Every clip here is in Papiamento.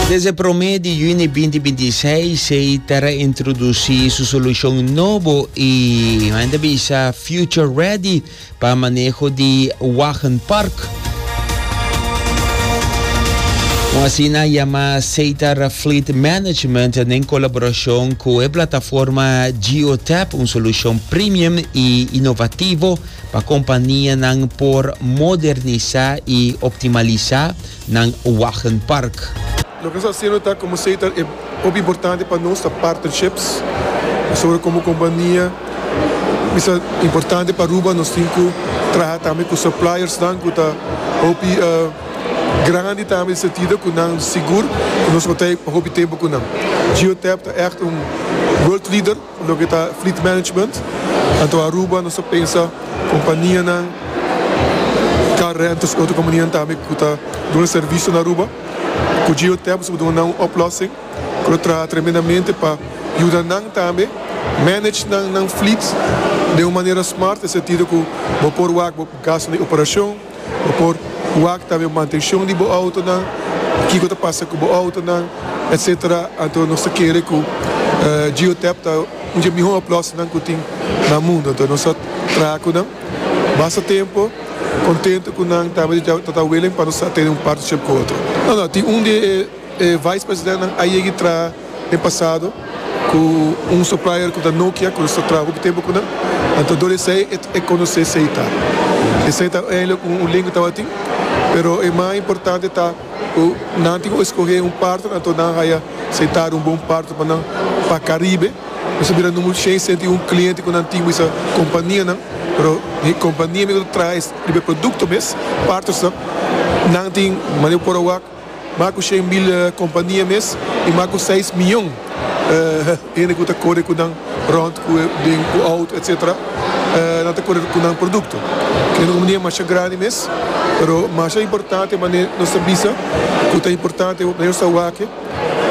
Desde promé di juni binti binti i seis, sei ta reintrodusí su solushon nobo i men ta bisa Future Ready pa maneho di wagenpark. Con asina yamá Seitar Fleet Management nen colaboracion cu e plataforma GeoTap, un solucion premium y innovativo Pa kompanianan por modernisá i optimalisá nan wagenpark. Loke nos ta hasiendo ta, komo esei ta e hopi importante pa nos, ta partnerships. Pasobra komo kompania bisa importante pa Aruba, nos tin ku traha tambe ku suppliersnan ku ta hopi grandi tambe den sentido ku nan sigur ku nos lo ta hopi tempu ku nan. Geotap ta ègt un world leader. Loke ta fleet management, anto Aruba nos ta pensa kompanianan, car rentals i otro kompanianan tambe ku ta duna servisio na Aruba. Ku Geotep nos por duna nan un oplòsing ku ta traha tremendamente pa yuda nan tambe manage nan fleet den un manera smart den sentido ku bo por wak bo gasto di operashon, Bo por wak tambe bo mantenshon di bo outonan, kiko ta pasa ku bo outonan, etc. Anto nos ta kere ku Geotap ta un dje mihó oplòsingnan ku tin na mundu. Anto nos ta traha ku nan basta tempu, kontentu ku nan tambe ta ta welen pa nos ta tene un partnership ku otro. No no tin un di e. E vice presidentnan a yegi traha den pasado cu un supplier cu ta Nokia cu nos ta traha hopi tempo cu nan, anto dor esey e conoce sey ta. Esey ta eindelijk un link cu tabatin, pero e mas importante ta cu nan tin cu escoge un partner anto nan a haya sey ta un bon partner pa nan pa Caribe. Nos a bira nu mucho shen senti un cliente cu nan tin cu esa companianan, pero e compania mes cu ta traha riba e producto mes, partnersnan, nan tin manera cu por awor. Mas ku shen mil kompania mes i mas ku seis miyon hende ku ta kore ku nan rònt, ku den ku outo etcetera, nan ta kore ku nan produkto. Kila ta un mania masha grandi mes, pero masha importante manera nos ta bisa ku ta importante manera nos ta wak-e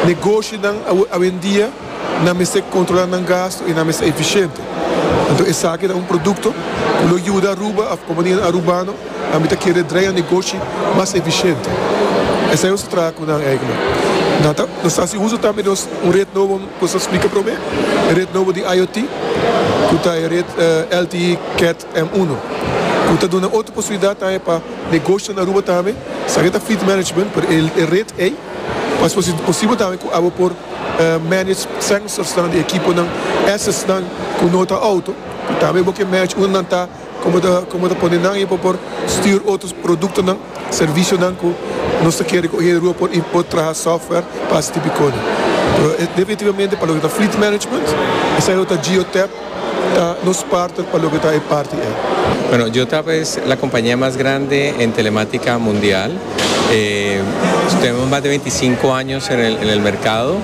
negoshinan awendia nan mester kontrolá nan gastu i nan mester efishente. Anto esaki ta un produkto ku lo yuda Aruba òf kompanianan arubano a mi ta kere dreia negoshi mas efisiente. Esei nos ta traha ku nan eigen. Nan ta nos hasi uso tambe di nos un ret nobo ku nos a splika promé, e ret nobo di IoT, ku ta e ret LTE Cat M uno, ku ta duna otro posibilidat tambe pa negoshinan na Aruba tambe sa ke ta fleet management pero e ret ei pa es posibel tambe ku abo por manage sensorsnan di ekiponan, assetsnan ku no ta outo, ku tambe bo ke manage unda nan ta. Como ta como ta pone nan y por por stuur otros productonan, servicionan cu nos ta kere cu e Rua por y por traha software pa haci tipo e cona. Pero e definitivamente pa loke ta fleet management esai lo ta Geotab ta nos partner pa loke ta e parti ei. Bueno, Geotab es la compañia mas grande en telematica mundial. Tenemos mas de veinticinco años en el en el mercado.